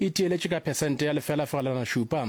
e theeletše ka phesente ya lefela fegelwana šupa.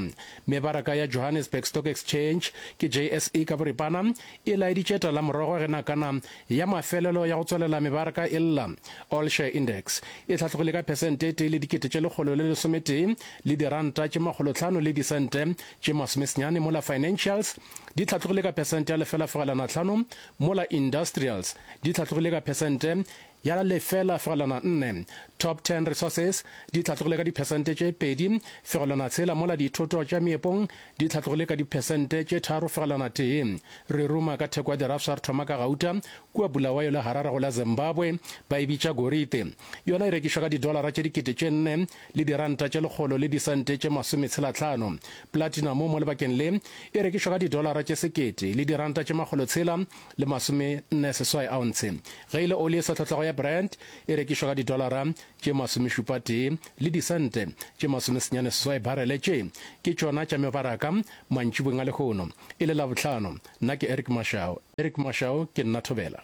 Mebaraka ya Johannesburg Stock Exchange, ke JSE ka boripana, e laeditše talamorogo ge nakana ya mafelelo ya go tswalela mebaraka e lla. All Share Index e hlatlogile ka phesente e tee le dikete tše lekgolo le lesometee le diranta tše makgolohlano le disente tše masomesenyane mola Financials di hlatlogile ka phesente ya lefela fegelwana hlano mola Industrials di hlatlogile ka phesente ya la lefela fegelwana nne, Top Ten Resources, di hlatlogile ka diphesente tše pedi fegelwana tshela mola dithoto tša meepong di hlatlogile ka diphesente tše tharo fegelwana tee. Re ruma ka theko ya dirafsa re thoma ka gauta kua Bulawayo le Harare go la Zimbabwe ba e bitša gorite. Yona e rekišwa ka didolara tše dikete tše nne le diranta tše lekgolo le disente tše masome tshela tlhano. Platinum mo lebakeng le e rekišwa ka didolara tše sekete le diranta tše makgolo tshela le masome nne seswai ounce, ge e le oli e sa tlhotlhago ya Brent e rekišwa ka didolara tše masomešupatee le disente tše masomesenyane seswai barele. Tše ke tšona tša mebaraka mantšibweng a lehono e le Labohlano. Nna ke Eric Mashau. Eric Mashau, Ke nna Thobela.